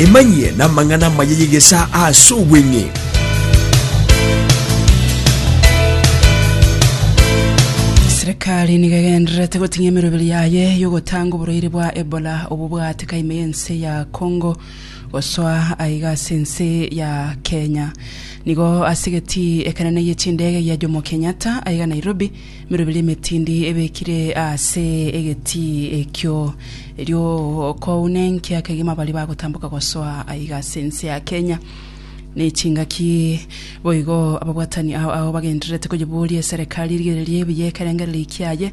Emanyie namang'ana amaya y'egesaa ase obweng'e. Serikali nigo egendererete goting'a emeroberi yaye y'ogotanga oborwaire bwa Ebola obwo bwaatika ime y'ense ya Congo gosoa aiga ase ense ya Kenya. Nigo ase egetii ekenene gie chindege gia Jomo Kenyatta aiga Nairobi Emeroberi emetindi ebekire ase egetii ekio, erio okouna enkia kegima baria bagotamboka gosoa aiga ase ense ya Kenya. Ne chingaki boigo ababwatani ao ao bagendererete koyiboria eserekari erigererie buya ekerengererio kiaye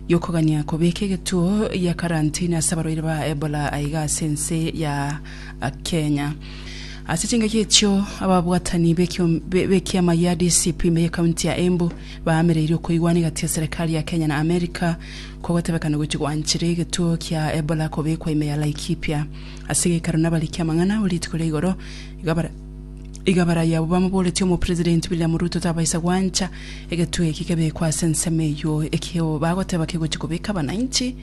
giokogania kobeka egetuo gia karantini ase abarwaire ba Ebola aiga ase ense ya Kenya. Ase chingaki echio ababwatani b'ekioma gia DCP ime y'ekaunti ya Embu Baamereirie okoigwana egati ya serekari ya Kenya na Amerika kwa gotebekana gochia gwanchera egetuo kia Ebola kobekwa ime ya Laikipia. Ase geikaro nabariki amang'ana abo rituko ria igoro, iga barayi abwo bamoboretie Omopresidenti William Ruto tabaisa gwancha egetuo eki kebekwe ase ensemo eyio, ekio bagoteba kegochia kobeka abanainchi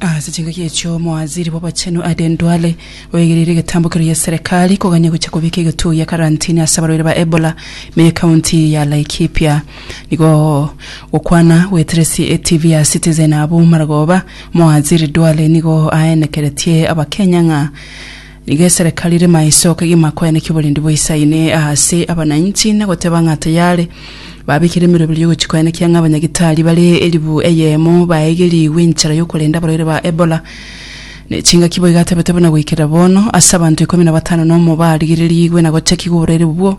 Ase chingaki echio omowaziri bw'abachenu Aden Duale oegereire egetambo keria gi'eserekari kogania gochia kobeka egetuo gia karantini ase abarwaire ba Ebola ime y'ekaunti ya Laikipia. Nigo gokwana gwetereti etv ya Citizen abwo maragoba, omowaziri Duale nigo aenekeretie abakenya ng'a Nigo eserekari ere maiso kegima kweaneka oborendi bwa Isayini aase abananchi, na goteba ng'a tayare babekire emeroberi y'ogochia koenekia ng'a abanyagitari bare elifu eyemo baegerigwe enchera y'okorenda abarwaire ba Ebola. Ne chingaki boigo atebete buna goikera bono, ase abanto ikomi na batano nomo barigererigwe na gochakigwa oborwaire obwo.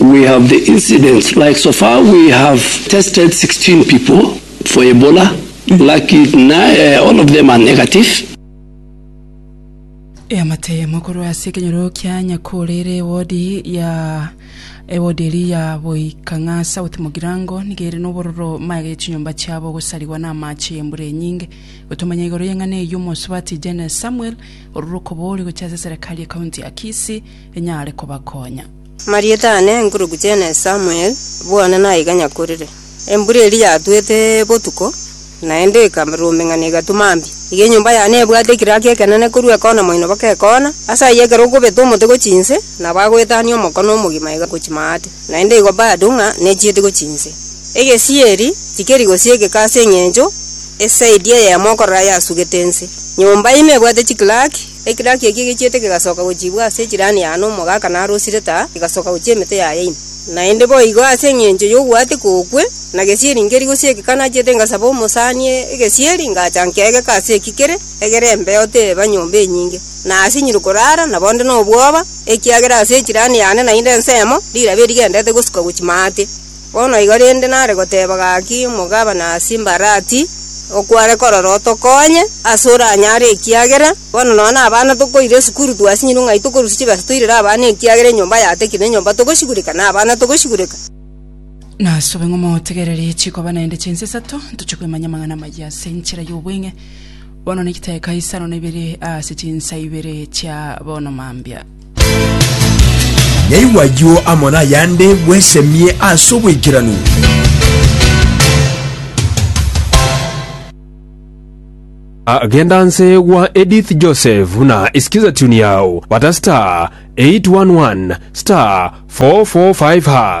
We have the incidents like so far we have tested 16 people for Ebola laki na all of them are negative. Eamatemo korwa ase ekenyoro kia Nyakore ere ewodi ya ewodi eria ya Boikang'a South Mugirango nigo ere nobororo maega ya chinyomba chiabo gosarigwa na amache y'embura enyinge. Gotomanya igoro y'eng'ana eyio omosubati Jane Samuel orure okobori gochia ase eserekari ya county ya Kisii enyare kobakonya. Marieta aane enkurugu chene Samuel, bono naiga nyakorire. Embura eria yatwete botuko, naende ekarumbeng'ana egatwa mambia. Iga enyomba yane ebwate ekiraki ekenene korwa ekona moino baka ekona, ase ayio ekero okobeta omote gochia inse, nabo agoetania omokone omogima iga gochia maate, naende igo bado ng'a nechiete gochia inse. Egesieri tikeri gosio egeka ase eng'encho esaidi eyemo okorora yasugete inse. Nyomba ime ebwate chikiraki. Ekiraki eki egechiete kegasoka gochiibwa ase echirani ya Anomu ogaaka narosire taa, egasoka gochia emete yaye ime. Naende boigo ase engencho y'ogwateka okwe, na gesieri nkeri gose egeka nachiete ngasaba omosani egesieri, ngacha nkegeka ase eki kere egere embeo teba nyomba enyinge, na asinyire koraara, na bonde nobwoba, ekiagera ase echirani yane naende ensemo, rilabe rigendete gosuka gochia maate. Bono igo rende nare goteba gaki omogabana ase embarati, okware korora otokonye ase oranyare ekiagera bono nonya na abana tokoira esukuru twasinyirwe ng'ai tokorusia chibesa toirere abana ekiagera enyomba yatekire na enyomba togosigureka na abana togosigureka. Nasobe ng'a motegererie chikoba naende chinsa isato ntoche koimanya amang'ana amayia ase enchera y'obweng'e bono na egeteka isano na ibere ase chinsa ibere chia bono mambia. Yaigwa ayio amo nayande, bwesemie ase oboikeranu. Agenda nse gwa Edith Joseph buna isikiza tune yao bata star 811 star 445 hash.